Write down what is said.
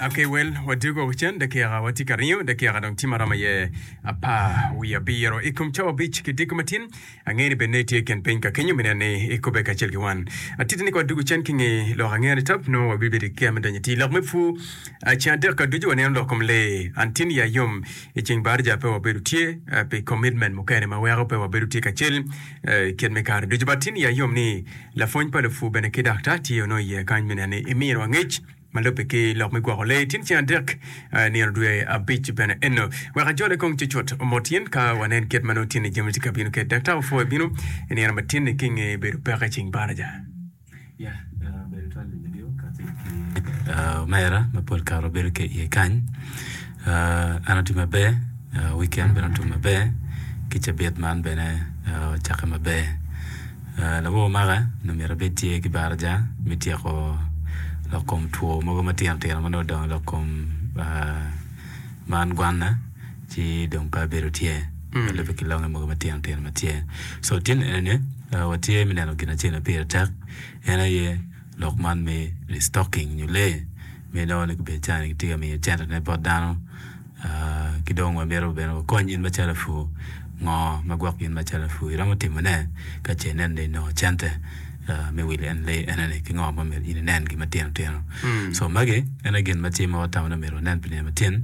Okay, well, wadwogo wacen dakika watye ka ringo dakika dong tye maromo iye apar wiye abiro i kom cawa abic ki diko matin angeyo ni bene ne itye ken piny ka kenyo mineno ni ikube kacel ki wan atiti ni ka wadwogo cen ki nge lok angeyo ni tap nongo wabibedo ki kea me donyo iti lok me pur Ah, ceng adek ka ducu waneno lok kom lee an tin ya yom i ceng barija pe wabedo tye ah, pi commitment mukene ma weko pe wabedo tye kacel I kit me kare ducu, batini ya yom ni lapwony pa lupwu bene ki daktar tye onongo iye kany me neno ni imino angec ma lubbe ki lok me gwoko lee tin ceng adek nino dwe abic bene eno. Wek ajole kong cucut mot in ka wanen kit ma nongo tinne jami tye ka bino kwede. Daktar opwoyo bino i nino matin-ni ki i nge bedo peke i ceng baraja. Omera ma pol kare obedo ki iye kany en otye maber wikend bene otum maber ki cabit man bene ocakke maber lawowa omaka dong myero abed tye ki baraja me tyeko lok kom two mogo matino tino ma nongo odongo lok kom man gwanna. Ci dong pe abedo tye, alubbe ki longe mogo matino tino ma tye. So tin enini, watye me neno gin acel ma pire tek, en aye lok man me restocking nyo lee ma inongo ni gubedo calo ni gitye ka miyo cente ne bot dano. Ki dong wamito bene wakony in ma calo lapur, ngo ma gwok in ma calo lapur iromo timo ne ka ce inen ni inongo cente me wilo en lee eneni ki ngo ma myero in inen gi matino tino. So magi en aye gin ma tye ma watamo ni omyero wanen pi nino matin.